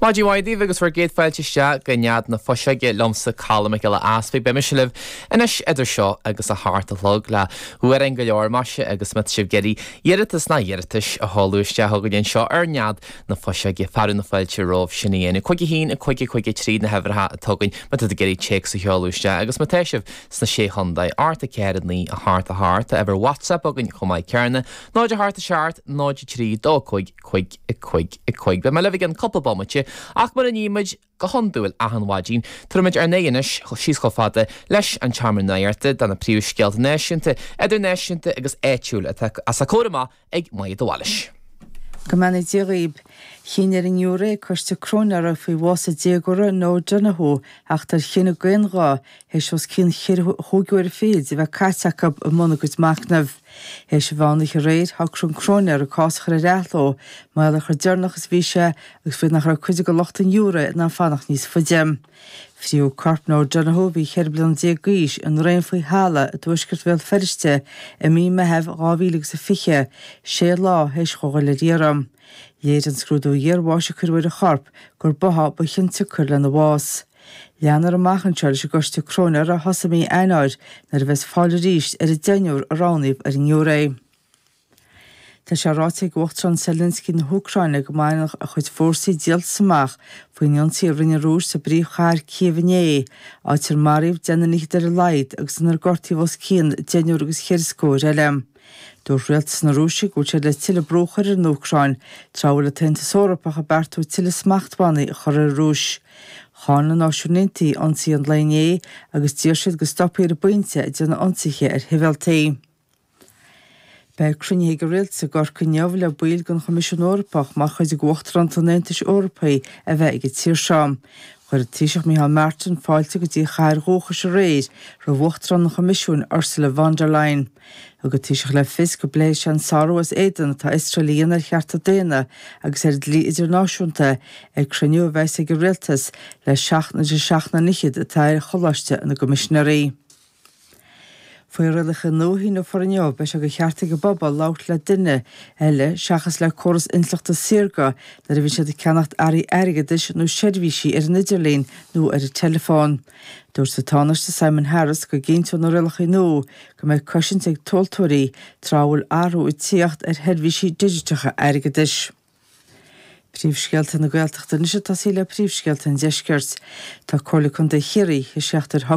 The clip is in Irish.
Maidin mhaith daoibh agus bhur gcéad fáilte isteach go Nead na Fuiseoige liomsa Colm Mac Giolla Easpaig. Beidh mise libh anois idir seo agus a hocht a chlog le hamhráin go leor maise agus má tá sibh ag iarraidh iarratas nó iarratais a sheoladh isteach chugainn anseo ar Nead na Fuiseoige. Fearadh na fáilte romhaibh sin a dhéanamh. Cúig a haon, a cúig, a cúig a trí na huimhreacha atá againn má tá tú ag iarraidh téacs a sheoladh isteach agus má tá sibh sna Sé Chondae. Ocht a ceathair a naoi a hocht a hocht. Tá uimhir WhatsApp againn chomh maith céanna, 0 8 7 0 3 2 5 5 5 5 Beidh mé libh i gceann cúpla bomaite ach mar a nímid go hiondúil achan mhaidin tabharfaimid ár n-aghaidh anois síos chomh fada leis an tseomra nuachta do na príomh scéalta náisiúnta, idirnáisiúnta agus áitiúil atá os ár gcomhair amach ag Maedhbh de Bhailis. Go mbeannaí Dia dhaoib. Chinn ar an ngiúiré coiste cróinéara faoi bhás an déagóra Noah Donohoe a theacht ar chinneadh d'aon ghuth théis os cionn chúig uair fichead a bheith caite acu i mbun a gcuid machnaimh. Théis an mheán oíche aréir, shocraigh an cróinéir an cás a chur ar athló, mar gheall ar chomh deireanach is a bhí sé, agus faoi nach raibh cuid de lucht an ghiúiré in ann fanacht níos faide. Frítheadh corp Noah Donohoe, a bhí cheithre bliana déag d'aois, i ndraein faoi thalamh i dtuaisceart Bhéal Feirste i mí Meitheamh dhá mhíle agus a fiche, sé lá théis dhó dhul ar iarraidh. Léirigh an scrúdú iarbháis a cuireadh ar a chorp gur báthadh ba chiontsiocair lena bhás. Leanfar amach anseo leis an gCoiste Cróinéara a thosaigh mí Eanáir nuair a bheas fáil arís ar an deichniúr a roghnaíodh ar an ngiúiré. Tá sé ráite ag Uachtarán Zelensky na hÚcráine go mbainfeadh a chuid fórsaí díoltas amach faoin ionsaí a rinne an Rúis sa bpríomhchathair Cív inné, áit ar maraíodh deich nduine fhichead ar a laghad agus inar gortaíodh os cionn deichniúr agus ceithre scór eile. Dúirt rialtas na Rúise go bhfuil siad le tuilleadh brú a chur ar an Úcráin, tráth a bhfuil an tAontas Eorpach ag beartú tuilleadh smachtbhannaí a chur ar an Rúis. Cháin na Náisiúin Aontaithe ionsaí an lae inné agus d'iarr siad go stopfaí ar an bpointe ag déanamh ionsaithe ar shibhialtaigh. Beidh cruinnithe ag an rialtas i gCorcaigh inniu le baill den Choimisiún Eorpach mar chuid de Uachtarántacht an Aontais Eorpaigh a bheith ag an tír seo. Chuir an Taoiseach Micheál Martin fáilte go dtí a chathair dhúchais aréir roimh Uachtarán an Choimisiúin Ursula von der Leyen. Thug an Taoiseach le fios go bpléifidh sé an sárú as éadan atá Iosrael a dhéanamh ar chearta daonna agus ar an dlí idirnáisiúnta ag cruinniú a bheas ag an Rialtas le seachtain idir seacht nduine fhichead atá ar Choláiste na gCoimisinéirí. Faoi rialacha nua a shíneofar inniu beidh sé de cheart ag an bpobal labhairt le duine eile seachas le córas intleachta saorga nuair a bhíonn siad ag ceannacht earraí airgeadais nó seirbhísí ar an idirlíon nó ar an teileafón. Dúirt an Tánaiste Simon Harris go gcinnteodh na rialacha nua go mbeadh cosaint ag tomhaltóirí tráth a bhfuil athrú ag teacht ar sheirbhísí digiteacha airgeadais. Príomhscéalta na Gaeltachta anois ag tosaí le príomhscéalta an Deiscirt. Tá Comhairle Contae Chiarraí i seachtar.